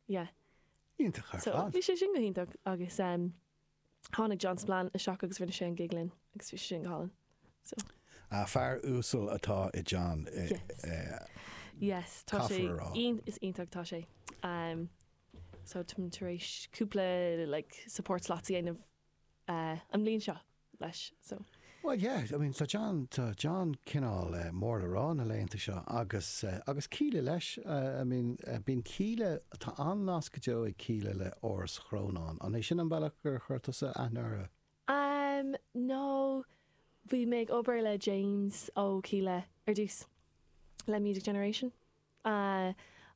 yeah. Iontach ar fad. So, bhí sé sin go hiontach agus em, tháinig John Spillane isteach agus rinne sé an gig linn agus bhí sé sin go hálainn. So. Ah, fear uasal atá i John. Yes. Yes, tá sé iontach, is iontach atá sé. Em, so, tá mé tar éis cúpla like support slots a dhéanamh eh, an mbliain seo. leis. So. Bhuel, yeah, I mean, tá John, tá John cineál mór le rá na laethanta seo agus, agus Kíla leis, I mean, bíonn Kíla, tá an-nasc go deo ag Kíla le Áras Chrónáin. An é sin an bealach gur chuir tusa aithne orthu? Ahm, no, bhí mé ag obair le James ó Kíla ar dtús, le Music Generation, aah,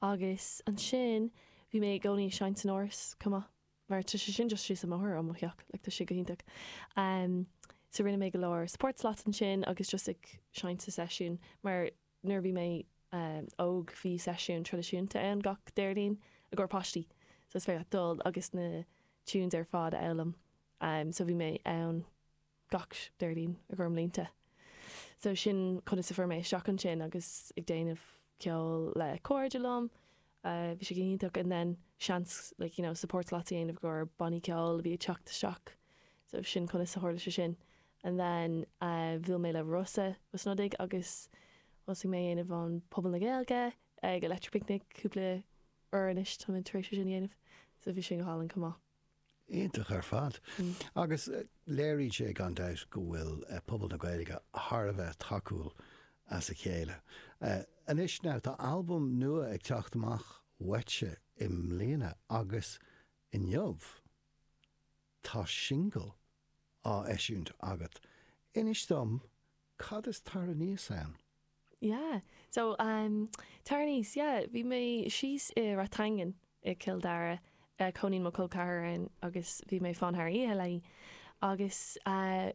agus ansin bhí mé i gcónaí ag seinnt san Áras chomh maith. Mar tá sé sin just síos an mbóthar ó mo theach, like tá sé go hiontach. So rinne mé go leor support slots ansin agus just ag seinnt sa seisiún, mar nuair a bhí mé óg bhí seisiúin traidisiúnta ann gach Déardaoin i gcomhair páistí, so is féidir leat dul agus na tunes ar fad a fhoghlaim. So bhí mé ann gach Déardaoin i gcomhair mblianta. So sin conas a fuair mé isteach ansin agus ag déanamh ceoil le cairde liom, bhí sé go hiontach and then seans like you know support slots a dhéanamh i gcomhair bannaí ceoil a bhí ag teacht isteach so sin conas a tharla sé sin. And then bhuail mé le Rossa Ó Snodaigh agus thosaigh mé a dhéanamh an Puball na Gaeilge ag Electric Picnic cúpla uair anois tá muid tar éis é sin a dhéanamh so bhí sin go hálainn chomh maith. Iontach ar fad. Agus léiríonn sé gan dabht go bhfuil pobal na Gaeilge thar a bheith tacúil dá chéile. Anois now, tá albam nua ag teacht amach uaitse i mbliana agus inniu tá singil á eisiúint agat. Inis dom, cad is Tar Aníos ann? Yeah, so um tar aníos, yeah, bhí mé síos i Ráth Iomgháin i gCill Dara, eh cónaíonn mo chol ceathar ann agus bhí mé ag fanacht thar oíche léi agus eh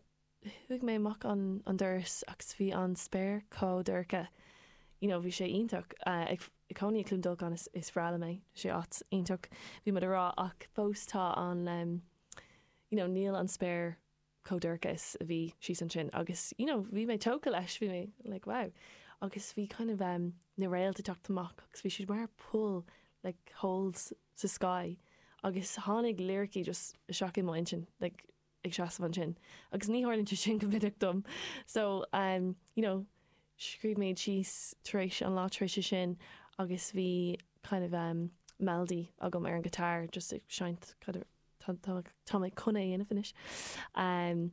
chuaigh mé amach an an doras agus bhí an spéir chomh dorcha, you know bhí sé iontach eh ag ag cónaí i Cluain Dolcáin is is bhreá liom é, sé áit iontach bhí muid a' rá ach fós tá an em you know níl an spéir chomh dorcha is a bhí síos ansin agus you know bhí mé tógtha leis, bhí mé like wow agus bhí kind of em na réalta ag teacht amach agus bhí siad mar poll like holes sa sky agus tháinig liricí just isteach i mo intinn like ag seasamh ansin agus ní tharlaíonn sé sin go minic dom so em you know scríobh mé iad síos tar éis an lá tar éis sin agus bhí kind of em melody agam ar an guitar just ag seinnt kind of tá, tá, tá mé chun é a dhéanamh anois em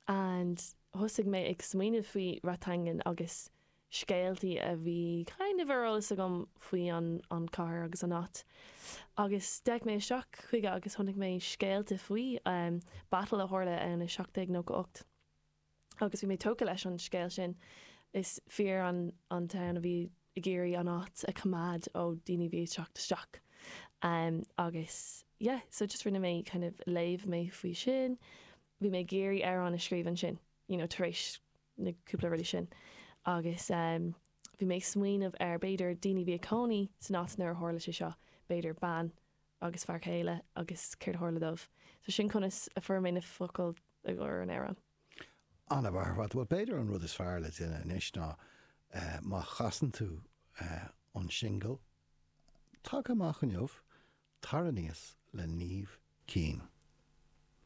and thosaigh mé ag smaoineamh faoi Rathangan agus scéaltaí a bhí kind of ar eolas agam faoi an, an cathair agus an áit agus d'fhéach mé isteach chuige agus chonaic mé scéalta faoi em battle a tharla ann i seacht déag nócha ocht. agus bhí mé tógtha leis an scéal sin. Is fir an domhain a bhí ag iarraidh an áit a choimeád ó daoine a bhí ag teacht isteach agus yeah, so just rinne mé kind of léamh mé faoi sin, bhí mé ag iarraidh amhrán a scríobh ansin you know tar éis na cúpla rudaí sin agus bhí mé ag smaoineamh ar b'fhéidir daoine a bhí ina gcónaí san áit nuair a tharla sé seo, b'fhéidir bean agus fear céile agus céard a tharla dóibh. So sin conas a fuair mé na focail i gcomhair an amhráin. An-mhaith, bhuel b'fhéidir an rud is fearr le déanamh anois ná má chasann tú an singil tagtha amach inniu, Tar Aníos le Niamh Keane.